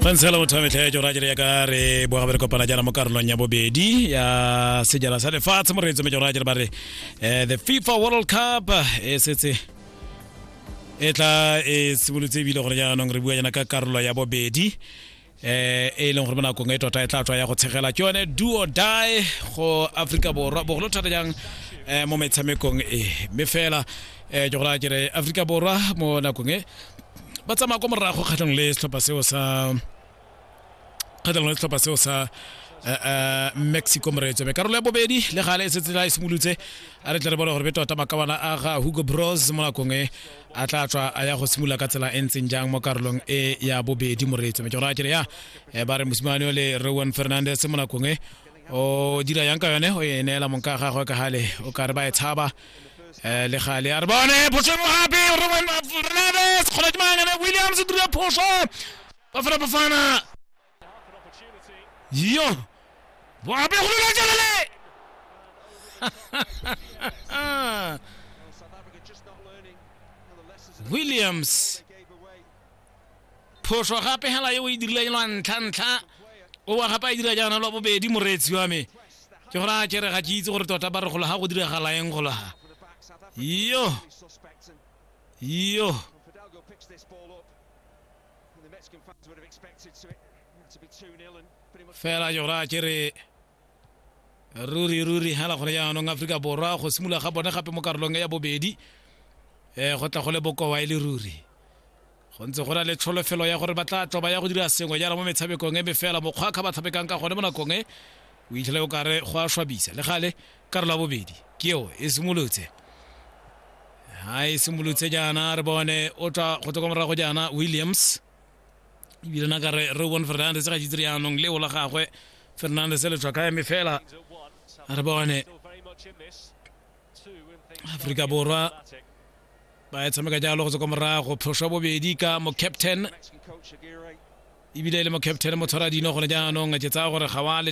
gantsi fela motho wa metlha ya jora jere ya ka re boga bere kopana jana mo karolong ya bobedi ya sejana sa lefatshe mo re etse mejora jere ba re eh, the fifa world cup e setse e tla e simolotse ebile gore jaanong re bua jana ka karolo ya bobedi eh e leng gore mo nakong e tota e tla tswa ya go tshegela ke yone duo die go aforika borwa bogolo thata jang um mo metshamekong e mme fela um ke gore kere aforika borwa mo nakong e ba tsamaya kwa morago kgatlhong le setlhopha seo sa kgatlhong le setlhopha seo sa eh, eh, mexico moreetso mme karolo ya bobedi le gale e setse la e simolotse a re tle re bone gore be tota makawana a ga hugo bros mo nakong e a tla tswa a ya go simolola ka tsela e ntseng jang mo karolong e ya bobedi moreetso mme ke gore a kere ya eh, ba re mosimane o le rowan fernandez mo nakong e o dira yang ka yone o e neela monka ga gagwe ka gale o ka re ba e tshaba eh, le gale a re bone phoso e mo gape rowan fernandez kgona ke mangane williams o dira phoso ba fela bafana Yo! Bon, après, on l'a déjà Williams. Phoso gape hela yo e dirile lwa ntlha ntlha o wa gape a dira jaana lwa bobedi moreetsi wa me ke gore a kere ga ke itse gore tota ba re gola ga go diragala eng gola ga yo yo fela yo raya ke re ruri ruri hela gone jaanong aforika borwa go simolola ga bone gape mo karolong ya bobedi um go tla go le bokowa e le ruri go ntse go na le tsholofelo ya gore ba tla tlo ba ya go dira sengwe jana mo metshamekong e mefela mokgwa ka ba tshamekang ka gone mo nakong e o itlhele o kare go a swabisa le gale karo la bobedi ke eo e simolotse ha e simolotse jaana re bone o tla go tloka morago jaana williams ebile na kare re bone fernandes ga jitse jaanong leo la gagwe fernandes le tlhwatlhwa eme fela re bone aforika borwa ba e tshameka jalo go tswa kwa morago phoso bobedi ka mo captain ebile e le mo captain mo tshwara dino gone jaanong ke tsaya gore ga wa